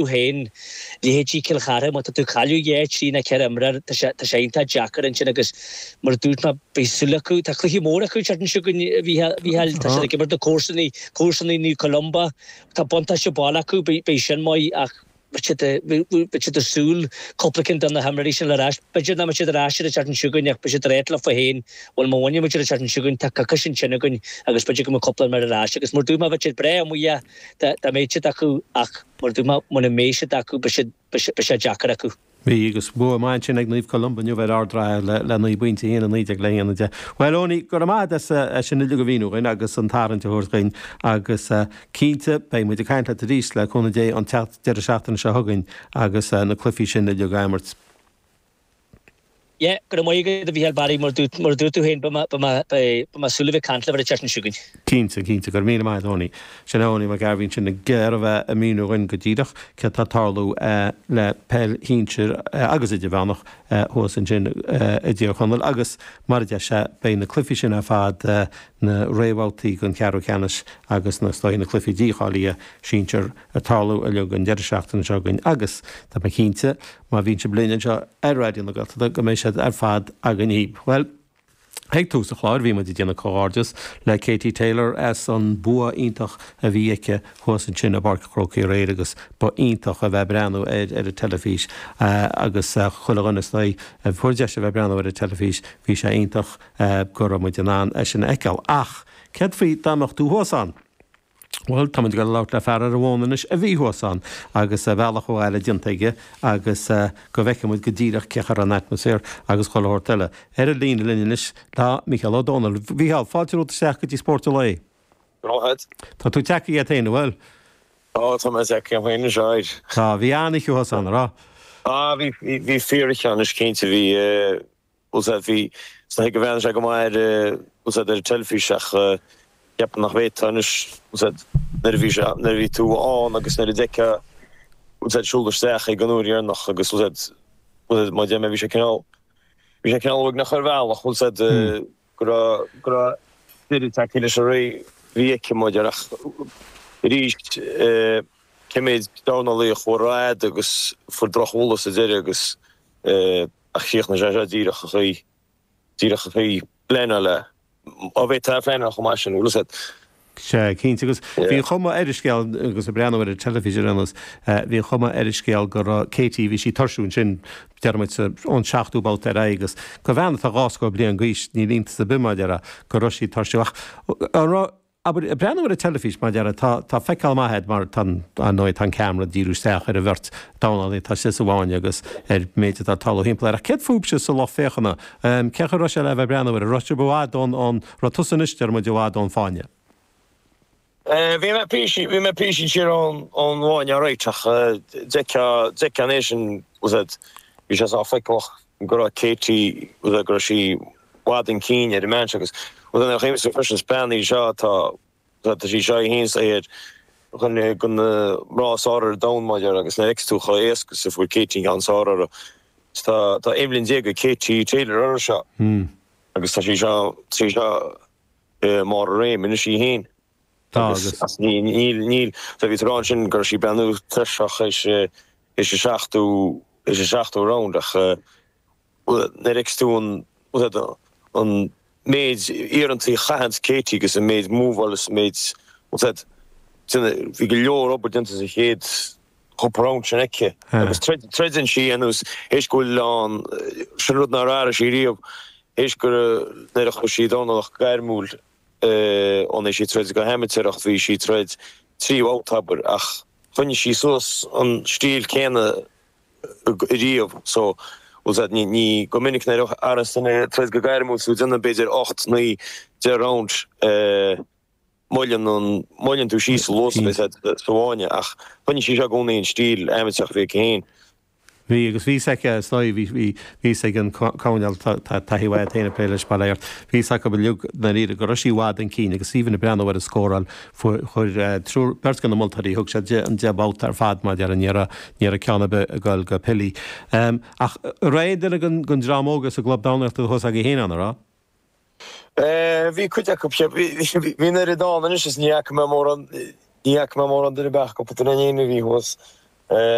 tú féin, leithéidí Cill Chartha, má tá tú ag cailleadh trí nó ceithre imreoir, tá sé, tá sé iontach deacair ansin agus mar a dúirt mé, beidh súil acu, tá cluichí móra acu an tseachtain seo chugainn, a Mhícheáil, tá siad ag imirt na comharsanaí, comharsanaí Naomh Columba, tá buntáiste baile acu, beidh, beidh sin maith ach beidh siad, bheadh, beidh siad ag súil, cúpla cinn de na himreoirí sin le rá, b'fhéidir nach mbeidh siad ar ais an tseachtain seo chugainn ach beidh siad ag ráit leo féin, bhuel má bhainfidh muid an tseachtain seo chugainn, tá coicís ansin againn agus b'fhéidir go mbeidh cúpla imreoir ar ais agus mar a dúirt mé, bheadh siad breá amuigh dhe, Dá mbeadh siad acu ach mar a dúirt mé mura mbeidh siad acu beidh sé deacair acu. Bhí agus bua maith ansin ag Naomh Columba inniu ar Ard an Rátha le 9 bpointe, 1, 19 le 1, 10. Bhuel, Eoiní, go raibh maith a'd as é sin uilig a mhíniú dhuinn agus an tarraingt a thabhairt dhuinn agus cinnte beidh muid ag caint leat arís, le cúnamh Dé, an deireadh seachtaine seo chugainn agus na cluichí sin uilig á imirt. Yeah, go raibh maith agat, a Mhícheáil Barry, mar a dúirt tú féin, beidh mé ag súil le bheith ag caint libh an tseachtain seo chugainn. Cinnte, cinnte, go raibh míle maith a'd, Eoiní. Sin é Eoin Mac Gairbhith ansin againn a bhí ag míniú dhúinn go díreach céard atá ag tarlú le peil shinsir agus idirmheánach thuas ansin i dTír Chonaill agus, mar a deir sé, beidh na cluichí sin ar fad na réamhbhabhtaí don cheathrú ceannais agus na, na cluichí dícháilithe sinsir ag tarlú uilig an deireadh seachtaine seo chugainn agus, tá mé cinnte, Má bhíonn sibh linn anseo ar Raidió na Gaeltachta go mbeidh siad ar fad againn daoibh. Bhuel, ag tús an chláir bhí muid ag déanamh comhghairdeas le Katie Taylor as an bua iontach a bhí aici thuas ansin i bPáirc an Chrócaigh aréir agus ba iontach a bheith ag breathnú air ar an teilifís agus chuile dhuine againn a fuair deis a bheith ag breathnú ar an teilifís bhí sé iontach go raibh muid in ann é sin a fheiceáil. Ach céard faoi dá mbeadh tú thuas ann? Bhuel, tá muid ag dul a labhairt le fear ar an bhfón anois a bhí thuas ann agus a bhealach abhaile déanta aige agus go bhfeicfidh muid go díreach cén sórt atmosphere agus chuile shórt eile. Ar an líne linn anois tá Mícheál Ó Domhnaill. Mhícheál, fáilte romhat isteach go dtí Spórt an Lae. Go raibh maith a't. Tá tú tagtha agat fhéin, an bhfuil? Tá, tá mé tagtha agam fhéin anois, aye. Bhí an-oíche thuas ann, an raibh? Tá, bhí, bhí, bhí fíor-oíche ann, is cinnte, bhí. Bhfuil fhios a't, bhí sé go hiontach, is ea go mba fhearr, bhfuil fhios a't, ar an teilifís ach cheapaim nach bhféadfá anois, bhfuil fhios a't, nuair a bhí sé, nuair a bhí tú ann agus nuair a d'fheicfeá, bhfuil fhios a't, ag siúl isteach don uair dheireanach agus, bhfuil fhios a't, bhfuil fhios a't, mar a déarfaidh mé bhí sé cineál, bhí sé cineál uaigneach ar bhealach, bhfuil fhios a't, go raibh, go raibh deireadh tagtha leis an ré a bhí aici muid ach arís cé mhéid dornálaí a chuaigh rófhada agus a fuair drochbhualadh sa deireadh agus Ach chríochnaigh sé seo díreach sa chaoi, díreach sa chaoi ar pleanáladh é. Ní bheifeá in ann é a phleanáil chomh maith sin, bhfuil fhios a't. Sea, cinnte, agus bhí an chuma ar an scéal, agus ag breathnú ar an teilifís ar aon nós, bhí an chuma ar an scéal go raibh Katie, bhí sí ag tuirsiú ansin, déarfaidh muid sa, ón seachtú babhta ar aghaidh, agus an bhean, tá dhá scór bliain d'aois, níl iontas ar bith, mar a déarfá, go raibh sí ag tuirsiú. Ach an raibh. Abair, ag breathnú ar an teilifís, mar a déarfá, tá, tá feiceáil maith agat mar tá an, ar ndóigh, tá an ceamara ag díriú isteach ar an bheirt dornálaí atá istigh sa bhfáinne agus ar an méid atá ag tarlú thimpeall air. Ach céard fúibhse sa lucht féachana? Cén chaoi a raibh sé le bheith ag breathnú air? An raibh sibh i bhfad ón, ón, an raibh tusa anois, Diarmuid, i bhfad ón bhfáinne? Bhí mé píosa, bhí mé píosa siar ón, ón bhfáinne alright ach d'fheicfeá, d'fheicfeá ina dhiaidh sin, bhí sé sách feiceálach go raibh Katie, go raibh sí. bhfad chun cinn ar an mbean seo agus rud eile a chímse freisin is bean í seo atá, tá sí seo í fhéin saor i gcoinne go na mná is fearr ar domhan mar a déarfá agus nuair a fheiceas tú chomh éasca is a fuair Katie an ceann is fearr uirthi is tá, tá aon bhliain déag ag Katie Taylor uirthi seo agus tá sí seo, tá sí seo i mbarr a réim anois í fhéin agus as níl, níl, níl, tá bhí siad ag rá ansin go raibh sí ag breathnú tuirseach sa, sa seachtú, sa seachtú round ach. Nuair a fheicfidh tú an, tá a fhios agat, an méid iarrantaí a chaitheann Katie agus an méid moveáil agus an méid, tá a fhios agat, duine, bhí go leor obair déanta sa chéad chúpla round sin aici agus troideann sí dhéanamh is tar éis go bhfuil ann, sin rud nár athraigh sí riamh, tar éis go nuair a chuaigh sí ag dornálaíocht gairmiúil ón uair a bhí sí ag troid go hamaitéarach bhí sí ag troid trí bhabhta abair ach choinnigh sí suas an stíl céanna riamh. So, bhuel, sea, ní, ní, go minic nuair a bhíos tú ag troid go gairmiúil sa deireadh, b'fhéidir ocht, naoi, deich round eh moilleann an, moilleann tú síos sa luas a bhíos agat sa bhfáinne ach choinnigh sí seo i gcónaí an stíl amaitéarach a bhí aici féin. Bhí, agus bhí fhios aici seo, bhí, bhí, bhí fhios ag an gcoirnéal tá, tá taithí mhaith aici féin ag plé leis, ba léir, bhí fhios acu uilig, ndáiríre, go raibh sí i bhfad chun cinn agus even ag breathnú ar an scóráil, Fuair triúr, beirt de na moltóirí, thug siad an deich mbabhta ar fad, mar a déarfainn, ní raibh ceann ar bith ag dul go Pilí. Ach raibh aon duine den dream óg sa gclub dornálaíochta thuas agaibh féin ann, an raibh? Bhí cuid acu, sea. Bhí an oiread ann anois is ní fhaca mé mórán, ní fhaca mé mórán duine, beagnach, déanta na fírinne, a bhí thuas.